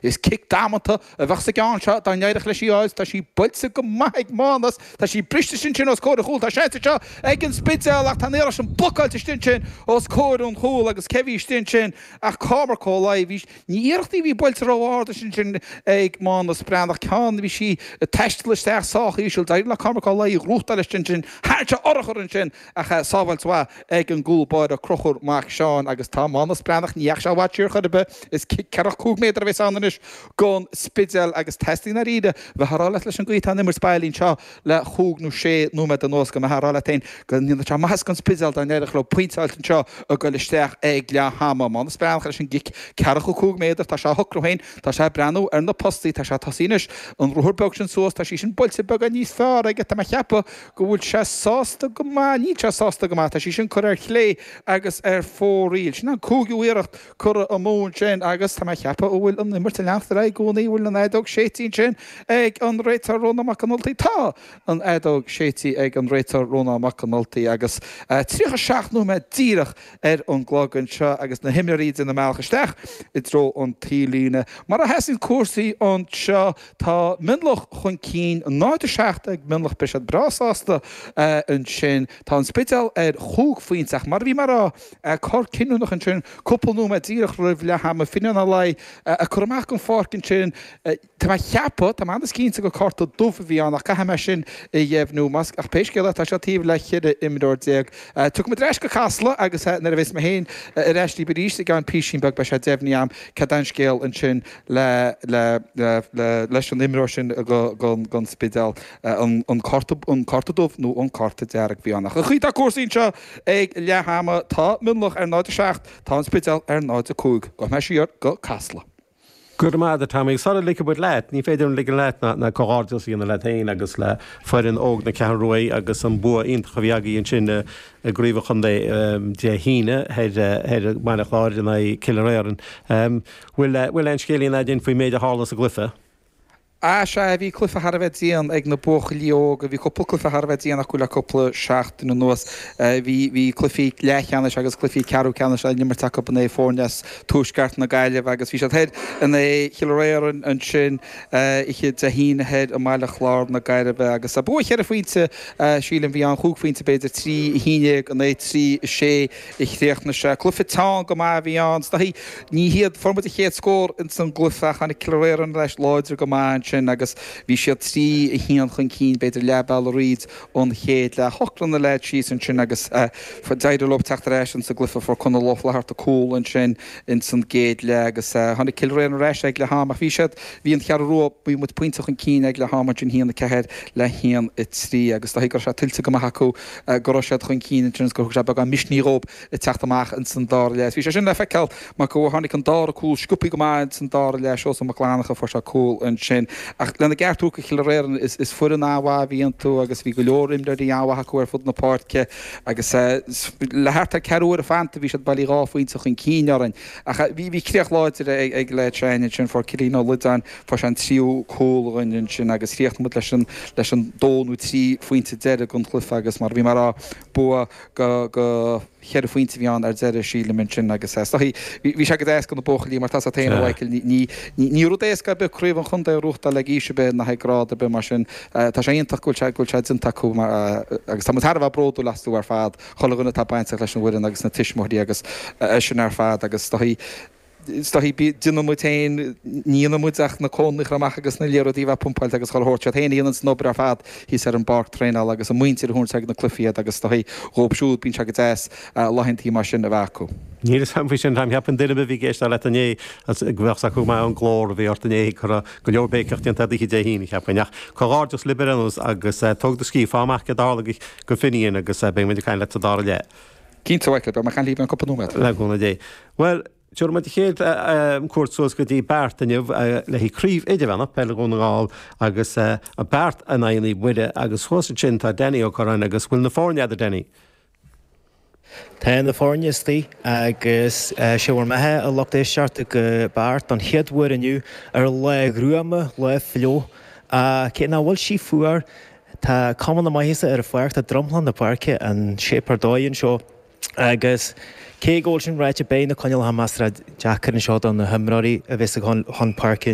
Is cic damanta a bheadh sa gceann seo dá n-éireodh leis í fháil. Tá sí buailte go maith ag Mánas. Tá sí briste ansin os comhair an chúil. Tá seans anseo ag an Spidéal ach tá an iarracht sin blocáilte istigh ansin os comhair an chúil agus cé a bhí istigh ansin ach Cormac Ó Laoi. Bhí ní iarracht í a bhí buailte ró-ard ansin ag Mánas Breathnach. Ceann a bhí sí ag taisteal isteach sách íseal. D'éirigh le Cormac Ó Laoi í a ghnóthachtáil istigh ansin. Tharraing sé urchar ansin. Ach sábháilt mhaith ag an gcúl báire Crochúr Mac Seáin agus tá Mánas Breathnach, ní dheachaigh sé i bhfad siar chor ar bith, is cic ceathracha cúig méadar a bheas ann anois gon Spidéal agus teastaíonn dáiríre bheith á rá leat leis an gcaoi atá an imirt bailín seo le chúig nó sé nóiméad anuas go mbeifeá ag rá leat féin go ndéanfadh sé maitheas gon Spidéal dá n-éireodh leo pointe a fháilt anseo ag goil isteach ag leath ama. Mánas Breathnach leis an gcic ceathracha cúig méadar, tá sé á shocrú féin, tá sé ag breathnú ar na postaí, tá sé ag tosaí anois, an ruathar beag sin suas, tá sí sin buailte beagán níos fearr aige tá mé a cheapadh, go bhfuil sé sásta go maith, níl sé sásta go maith, tá sí sin curtha ar chlé agus ar fóraoil. Sin an cúigiú iarracht curtha amú ansin agus tá mé a cheapadh an bhfuil an imirt ag leanacht ar aghaidh i gcónaí, an bhfuil an fheadóg séidte ansin ag an réiteoir Rónán Mac an Ultaigh? Tá an fheadóg séidte ag an réiteoir Rónán Mac an Ultaigh agus 37 nóiméad díreach ar an gclog anseo agus na himreoirí ag déanamh a mbealach isteach i dtreo an taobhlíne. Mar a sheasann cúrsaí anseo, Tá Mionlach chun cinn, 0, 7 ag Mionlach beidh siad breá sásta ansin. Tá an Spidéal ar chúig phointe ach mar a bhí mé a rá, cor cinniúnach ansin cúpla nóiméad díreach roimh leath ama, Finian Ó Laoi á chur amach den pháirc ansin tá mé a cheapadh, tá mé ionann is cinnte gur cárta dubh a bhí ann ach caithfidh mé sin a dheimhniú más, ach pé scéal é tá siad taobh le cheithre imreoir déag. Tiocfaidh muid ar ais go Casla agus nuair a bheas mé féin ar ais libh arís i gceann písín beag beidh sé deimhnithe agam cad é an scéal ansin. le le le le leis an imreoir sin go go gon Spidéal an an cárta an cárta dubh nó an cárta dearg a bhí ann ach an chaoi atá cúrsaí anseo ag leath ama tá Mionlach ar 0 7 tá an Spidéal ar 0 5 gabhfaidh muid siar go Casla. Go raibh maith agat, a Tommy. Sar a ligfidh muid leat, ní féidir a ligean leat ná ná comhghairdeas a dhéanamh leat féin agus le foireann óg na Ceathrún Rua agus an bua iontach a bhí agaibh ansin i gcraobh an chontae Dé hAoine thoir i mBaile Chláir in aghaidh Cill Fhir Iarainn. Bhfuil aon scéilín a'd fhéin faoin méid a tharla sa gcluife? Á, sea, bhí cluife thar a bheith dian ag na buachaillí óga, bhí cúpla cluife thar a bheith dian acu le cúpla seachtain anuas. Bhí, bhí cluife leathcheannais agus cluife ceathrú ceannais á n-imirt acu in aghaidh foirne as tuaisceart na Gaillimhe agus bhí siad thoir in aghaidh Chill Fhir Iarainn ansin oíche Dé hAoine thoir i mBaile Chláir na Gaillimhe agus bua cheithre phointe sílim a bhí ann, chúig phointe b'fhéidir, trí a haon déag in aghaidh trí a sé. Is dóichí cluiche teann go maith a bhí ann, is dóichí, b'fhéidir, fuair muid an chéad scór ins an gcluiche ach tháinig Cill Fhir Iarainn ar ais láidir go maith ansin agus bhí siad 3-1 chun cinn b'fhéidir leath bealaigh thríd an chéad leath. Shocraigh na leaids síos ansin agus d'éirigh leo teacht ar ais ins an gcluiche. Fuair Conal Ó Flatharta cúl ansin ins an gcéad leath agus tháinig Cill Fhir Iarainn ar ais ag leath am ach bhí siad, bhí an Cheathrú Rua, bhí muid pointe chun cinn ag leath am ansin, 1-4 le 1-3 agus is dóichí go raibh sé tuillte go maith acu. go raibh siad chun cinn ansin agus gur thug sé beagán misnigh dhóib le teacht amach ins an dara leath. Bhí sé sin le feiceáil mar go tháinig an dara cúl sciobtha go maith ins an dara leath, Seosamh Mac Fhlannacha fuair sé cúl ansin. Ach lena gceart a thabhairt do Chill Fhir Iarainn is foireann an-mhaith a bhí iontu agus bhí go leor imreoirí an-mhaith acu ar fud na páirce agus le thart ar ceathrú uaire fanta bhí siad bailí dhá phointe chun cinn orainn. Ach bhí bhí críoch láidir ag leaids s'againne ansin, fuair Cillian Ó Loideáin, Fuair sé an tríú cúl againn ansin agus chríochnaigh muid leis an dó nó trí phointe deiridh den chluiche agus mar a bhí mé a rá, bua go cheithre phointe a bhí ann ar deireadh, sílim. Ansin agus is dóigh, bhí sé go deas do na buachaillí mar tá a fhios a'd féin, a Mhaidhcil, ní rud éasca ar bith craobh an chontae a ghnóthachtáil ag aois ar bith ná ag grád ar bith mar sin tá sé iontach go bhfuil sé déanta acu agus tá muid thar a bheith bródúil astu ar fad, chuile dhuine atá bainteach leis an bhfoireann agus na tuismitheoirí agus sin ar fad agus is dóigh, is dóichí b'fhéidir. Déanann muid féin, ní dhéanann muid ach na cóin a chur amach agus na liathróidí a bheith pumpáilte agus comhairle a thabhairt. Siad féin a dhéananns an obair ar fad thíos ar an bpáirc traenáil agus an mhuintir a thabharns ag na cluichí iad agus is dóichí dhóibh siúd. Bíonn sé go deas laethantaí mar sin a bheith acu. Níl 'fhios a'm faoi sin, anois, cheapfainn duine a bhí ag éisteacht leat inné go bheadh 's acu go maith an glór a bhí ort inné, go raibh go leor béiceach déanta a'd oíche Dé hAoine, cheapfainn. Ach comhghairdeas libh ar aon nós agus tóg do scíth, faigh amach céard a tharla do Finnian agus beidh muid ag caint leat sa dara leath. Cinnte, Mhaidhcil, beidh mé ag caint libh i gceann cúpla nóiméad. Le cúnamh Dé. Bhuel, tabharfaidh muid an chéad chuairt suas go dtí Beart inniu le haghaidh Craobh Idirmheánach Peile Dhún na nGall agus Beart in aghaidh Naomh Muire agus thuas ansin tá Danny Ó Corráin agus bhfuil na foirne agat, Danny? Tá na foirne istigh agus sé bhur mbeatha, a lucht éisteachta, go Beart don chéad uair inniu ar lá gruama, lá fliuch. Cé nach bhfuil sí fuar, Tá cuma na maitheasa ar an pháirc, tá dromchla na páirce, in shape ar dóigh anseo agus cé go bhfuil sin ráite beidh na coinníollacha measartha deacair anseo do na himreoirí a bheas ag gabháil chun páirce.